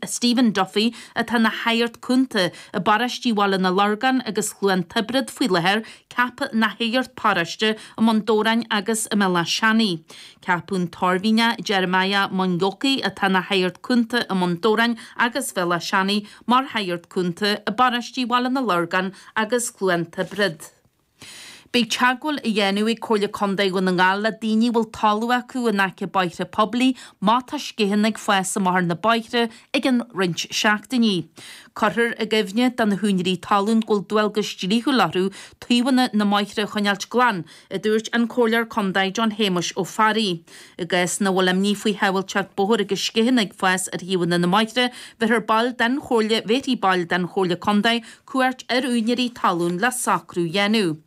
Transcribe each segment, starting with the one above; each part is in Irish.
Stephen Duffy atá ina shagart cúnta i bparóistí Bhaile na Lorgan agus Chluain Tiobrad faoi láthair, ceaptha ina shagart paróiste i mBun Dobhráin agus i mBéal Átha Seanaidh. Ceapadh an tOirmhinneach Jeremiah Munyoki, atá ina shagart cúnta i mBun Dobhráin agus Bhéal Átha Seanaidh, mar shagart cúnta i bparóistí Bhaile na Lorgan agus Chluain Tiobrad. Beidh teagmháil á dhéanamh ag Comhairle Contae Dhún na nGall le daoine a bhfuil talamh acu in aice bóithre poiblí má tá sceitheanna ag fás amach thar na bóithre i gcionn roinnt seachtainí. Cuirfear i gcuimhne do na húinéirí talún go bhfuil dualgas dlíthiúil orthu taobhanna na mbóithre a choinneáilt glan, a dúirt an Comhairleoir Contae John Shéamuis Ó Fearraigh. I gcás ina bhfuil imní faoi shábháilteacht bóthair agus sceitheanna ag fás ar thaobhanna na mbóithre bheirthear baill den Chomhairle bhéarfaidh baill den Chomhairle Contae cuairt ar úinéirí talún le socrú a dhéanamh,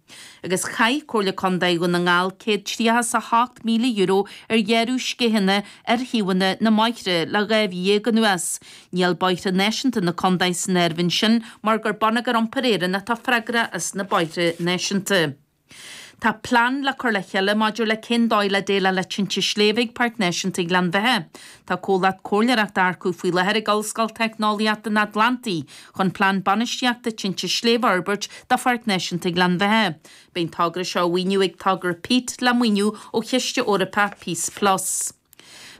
agus chaith Comhairle Contae Dhún na nGall €138,000 ar ghearradh sceitheanna ar thaobhanna na mbóithre le dhá mhí déag anuas. Níl Bóithre Náisiúnta na Contae san áireamh ansin mar gur Bonneagar Iompair Éireann atá freagrach as na bóithre náisiúnta. Tá plean le cur le chéile maidir le cén dóigh le déileáil le tinte sléibhe ag Páirc Náisiúnta Ghleann Bheithe. Tá comhlacht comhairleoireachta á earcú faoi láthair ag Ollscoil Teicneolaíochta an Atlantaigh chun plean bainistíochta tinte sléibhe a fhorbairt do Pháirc Náisiúnta Ghleann Bheithe. Beidh an togra seo á mhaoiniú ag togra PEAT le maoiniú ó Chiste Eorpach Peace Plus.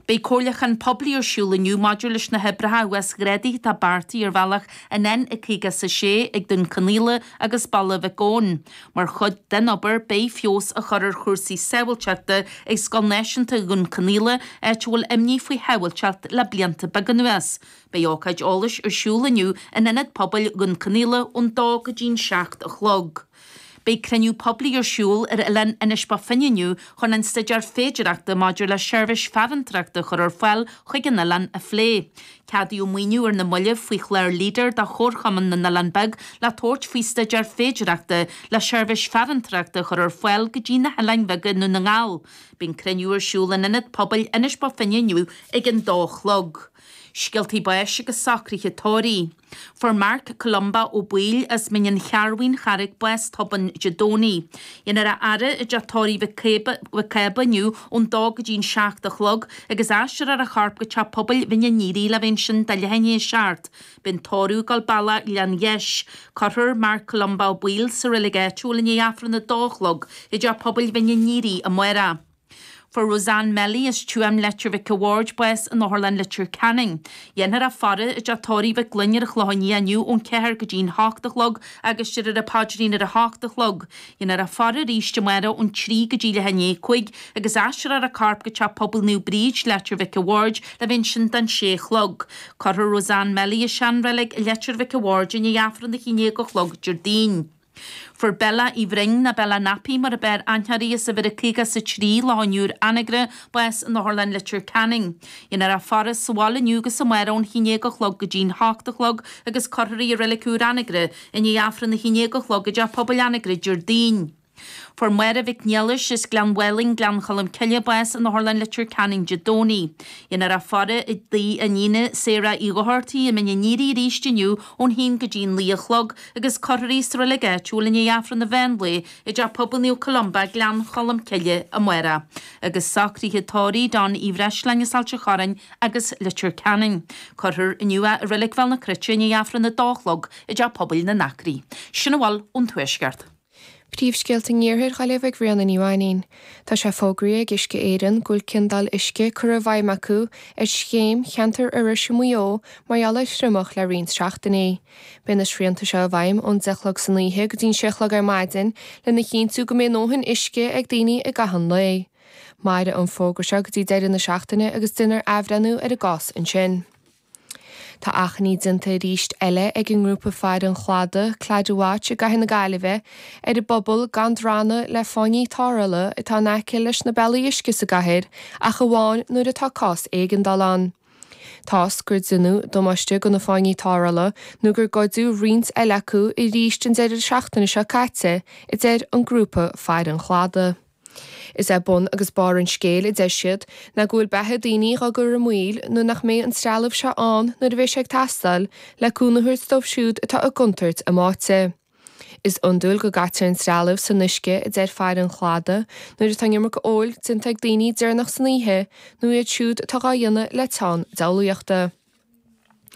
Beidh comhairliúchán poiblí ar siúl inniu maidir leis na hoibreacha uasghrádaithe atá beartaithe ar bhealach an N56 ag Dún Cionnaola agus Baile Mhic Gabhann. Mar chuid den obair, beidh feabhas á chur ar chúrsaí sábháilteachta ag Scoil Náisiúnta Dhún Cionnaola, áit a bhfuil imní faoi shábháilteacht le blianta beaga anuas. Beidh ócáid eolais ar siúl inniu in Ionad Pobail Dhún Cionnaola ón 2 go dtí an 7 a chlog. Beidh cruinniú poiblí ar siúl ar Oileán Inis Bó Finne inniu chun an staidéar féidireachta maidir le seirbhís farantóireachta a chur ar fáil chuig an oileán a phlé. Ceadaíodh maoiniú ar na mallaibh faoi chlár Leader do Chomharchumann na nOileán Beag le tabhairt faoi staidéar féidireachta le seirbhís farantóireachta a chur ar fáil go dtí na hOileáin Bheaga i nDún na nGall. Beidh an cruinniú ar siúl in Ionad Pobail Inis Bó Finne inniu ag an dó a chlog. Scéaltaí báis agus socruithe tórraimh. Fuair Mark Columba Ó Baoill as Mín an Chearrbhaigh, An Charraig bás tobann Dé Domhnaigh. Déanfar a fhaire i dTeach Tórraimh Mhic Cába inniu ón dó go dtí an seacht a chlog agus aistreofar a chorp go teach pobail Mhín an Aoire le bheith ansin do leath i ndiaidh a seacht. Beidh an tórramh ag gabháil bealach Ghleann Gheis. Cuirfear Mark Columba Ó Baoill sa reilig áitiúil i ndiaidh Aifreann a dó a chlog i dteach pobail Mhín an Aoire amárach. Fuair Roseanne Melly as Tuaim Leitir Mhic a Bhaird bás in Otharlann Leitir Ceanainn. Dhéanfar a faire i dteach Tórraimh Mhic Fhloinn ar an Chlochán Liath inniu ón 4 go dtí'n 8 a chlog agus deirfear an paidrín ar a 8 a chlog. Dhéanfar a faire arís amáireach ón 3 go dtí leath i ndiaidh a cúig agus aistreofar a corp go Teach Pobail Naomh Bríd, Leitir Mhic a Bhaird le bheith ansin don 6 a chlog. Cuirfear Roseanne Melly i seanreilig Leitir Mhic a Bhaird i ndiaidh Aifreann a haon déag a chlog Déardaoin. Fuair Bella Uí Bhroin, nó Bella Nappy mar ab fhearr aithne uirthi, as uimhir a 53 Loch an Iúir Anagaire bás in Otharlann Leitir Ceanainn. Dhéanfar a faire sa bhaile inniu agus amárach ón haon déag a chlog go dtí'n h-ocht a chlog agus cuirfear í i Reilig Úr Anagaire i ndiaidh Aifreann a haon déag a chlog i dTeach Pobail Anagaire Déardaoin. Fuair Máire Mhic Niallais, as Gleann Mhálainn, Gleann Cholm Cille bás in Otharlann Leitir Ceanainn Dé Domhnaigh. Dhéanfar a faire i dtigh a hiníne Sarah Uí Dhochartaigh i Mín an Aoire arís inniu ón haon go dtí'n naoi a chlog agus cuirfear í sa reilig áitiúil i ndiaidh Aifreann an mheán lae i dTeach Pobail Naomh Columba, Gleann Cholm Cille, amárach, agus socruithe tórraimh John Uí Bhreisleáin as Ailt an Chorráin agus Leitir Ceanainn. Cuirfear inniu é i Reilig Bhéal na Cruite i ndiaidh Aifreann a dó a chlog i dTeach Pobail na nAcraí. Sin a bhfuil ón Tuaisceart. Príomhscéalta an Iarthair dhá léamh ag Ríona Ní Mhainín Tá sé fógraithe ag Uisce Éireann go bhfuil ciondáil uisce curtha i bhfeidhm acu ar scéim cheantar Iorrais i Maigh Eo mar gheall ar thriomach le roinnt seachtainí. Beidh na srianta seo i bhfeidhm ón deich a chlog san oíche go dtí an sé a chlog ar maidin lena chinntiú go mbeidh a ndóthain uisce ag daoine i gcaitheamh an lae. Mairfidh an fógra seo go dtí deireadh na seachtaine agus déanfar athbhreithniú ar an gcás ansin. Tá achainí déanta arís eile ag an ngrúpa Faire an Chladaigh, Claddagh Watch, i gcathair na Gaillimhe ar an bpobal gan drannadh le fáinní tarrthála atá in aice leis na bealaí uisce sa gcathair ach amháin nuair atá cás éigeandála ann. Tá a fhios gur déanadh damáiste do na fáinní tarrthála nó gur goideadh roinnt eile acu arís an deireadh seachtaine seo caite, a deir an grúpa Faire an Chladaigh. Is é bun agus barr an scéil, a deir siad, ná go bhfuil beatha daoine dhá gcur i mbaol nuair nach mbeidh an trealamh seo ann nuair a bheas sé ag teastáil le cúnamh a thabhairt dóibh siúd atá i gcontúirt a mbáite. Is iondúil go gcaitear an trealamh san uisce, a deir Faire an Chladaigh, nuair atá an iomarca óil déanta ag daoine deireanach san oíche nó iad siúd atá dhá dhéanamh le teann diabhlaíochta.